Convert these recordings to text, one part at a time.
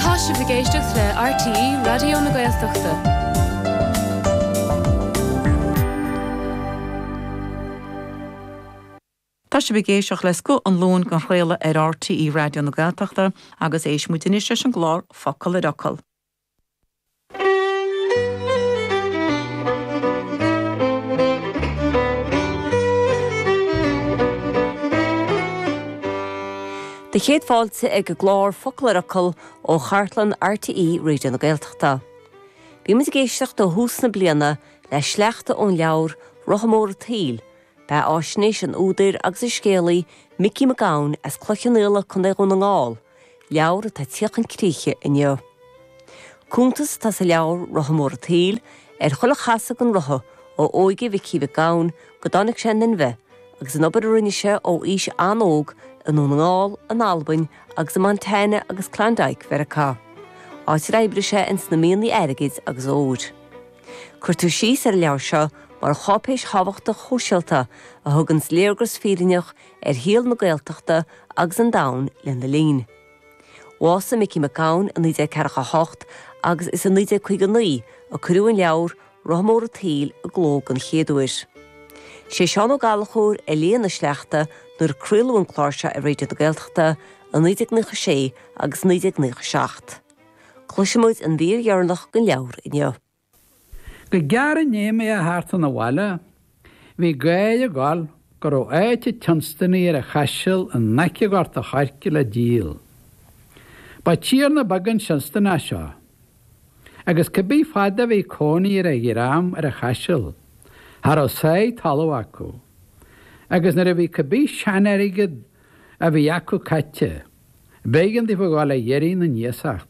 Tá sibh ag éisteacht le RTÉ Raidió na Gaeltachta. Tá sibh ag éisteacht le 'Scoth an Luain' den chraoladh ar RTÉ Raidió na Gaeltachta agus éist muid anois leis an gclár 'Focal ar Fhocal'. Do chéad fáilte ag an gclár Focal ar Fhocal ó chartlann RTÉ Raidio na Gaeltachta. Bíonn muid ag éisteacht ó thús na bliana le sleachta ón leabhar Rotha Mór an tSaoil, beatháisnéis an údair agus an scéalaí Micí Mac Gabhann as Cloich Cheann Fhaola, Co. Dhún na nGall, Leabhar atá ag tíocht chun críche inniu. Cuntas atá sa leabhar, Rotha Mór an tSaoil, ar chuile chasadh den rotha ó óige Mhicí Mhic Gabhann go dtáinig sé in inmhe agus an obair a rinne sé ó aois an-óg i nDún na nGall, in Albain agus i Montana agus Klondike Mheiriceá, áit ar oibrigh sé ins na mianaigh airgid agus óir. Cuirtear síos ar an leabhar seo mar cháipéis thábhachtach shóisialta a thuganns léargas fírinneach ar shaol na Gaeltachta agus an domhain lena linn. Bhásaigh Micí Mac Gabhann i 1948 agus is i 1959 a cuireadh an leabhar, Rotha Mór an tSaoil, i gcló den chéad uair. Sé Seán Ó Gallchóir a léigh na sleachta nuair a craoladh an clár seo ar Raidio na Gaeltachta i 1996 agus 1997. Cloisfidh muid an mhír dheireanach den leabhar inniu. Go gearr i ndiaidh mé a theacht chun an bhaile bhí gáir ag gabháil go raibh áit an tSeonstanaigh ar an Chaiseal in aice Ghort an Choirce le díol. Ba tiarna beag an Seonstanach seo agus cá bith fad a bhí cónaí ar a dhream ar an Chaiseal cha raibh sáith talamh acu agus nuair a bhí cá bith seanairgead a bhí acu caithte b'éigean daofa a dhul a dh'iarraidh na n-iasacht.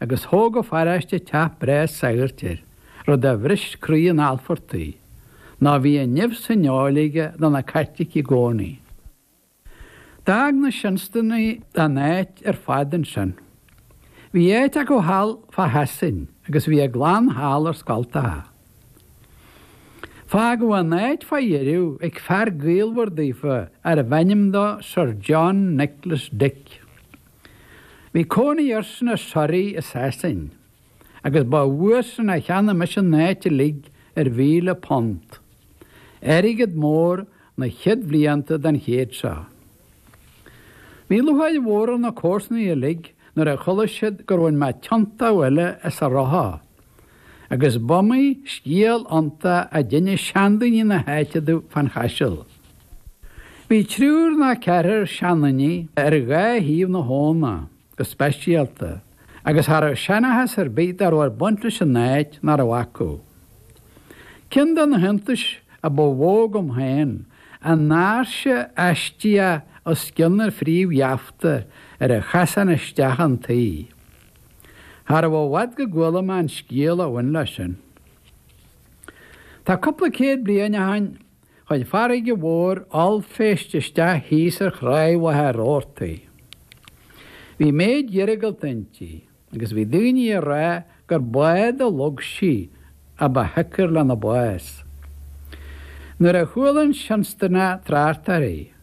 agus thóg an pharáiste teach breá sagairt air, rud a bhris croí an Alfartaigh, ná bhí an nimh san fheoil aige do na Caitlicigh i gcónaí. D'fhág na Seonstanaigh an áit ar fad ansin. Bhí áit acu thall fá Shasain agus bhí a gclann thall ar scoilteacha. Fágadh an áit fá dheireadh ag fear gaolmhar daofa arbh ainm dó Sir John Nicholas Dick. Bhí cónaí airsean i Surrey i Sasain agus ba uaidhsean a cheannaigh mise an áit uilig ar mhíle punt, airgead mór na chéad bhlianta den chéad seo. Bhí lúcháir mhór ar na comharsanaigh uilig nuair a chuala siad gur bhain mé tiontó eile as an rotha. agus b'iomaí scéal iontach a d'innis seandaoine na h-áite domh fán Chaiseal. Bhí triúr ná ceathrar seandaoine ar dhá thaobh na h-abhna go speisialta agus cha rabh seanachas ar bith dá rabh ag baint leis an áit nach rabh acu. Ceann de na h-iontais a ba mhó dhom féin an áirse aistíoch os cionn an phríomh-gheafta ar an chasán isteach 'un tí. Charbh i bhfad go gcuala mé an scéal a bhain leis sin. Tá cúpla céad bliain ó shin chuir farraige mhór ollphéist isteach thíos ar Thráigh Mhachaire Rabhartaigh. Bhí méid iargúlta inti agus bhí daoine ag rá gur bád a shlog sí a ba shiocair lena bás. Nuair a chuala an Seonstanach trácht uirthi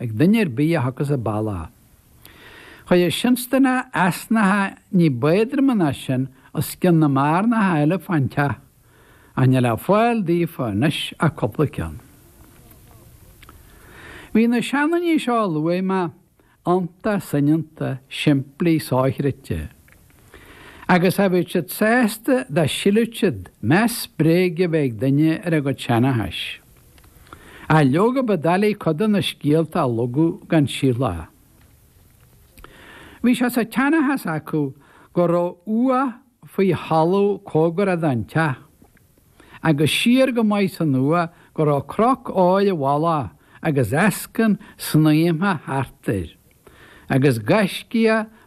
ag duine ar bith a thiocfas an bealach. Chuir an Seonstanach easnacha ní b'éadroime ná sin os cionn na mbearnacha eile fán teach, ach níl le fáil daofa anois ach cupla ceann. Bhí na seandaoine seo a luaigh mé iontach soineanta, simplí, sochreidte. Agus cha bhíodh siad sásta dá sílfeadh siad meas bréige a bheith ag duine ar a gcuid seanachais. Ach leoga ba doiligh cuid de na scéalta a shlogadh gan síothlú. Bhí sé sa tseanchas acu go raibh uaigh faoi thalamh comhgarach don teach, agus siar go maith san uaigh go raibh croca óir i bhfolach agus eascann snaidhmthe thart air, agus gaiscíoch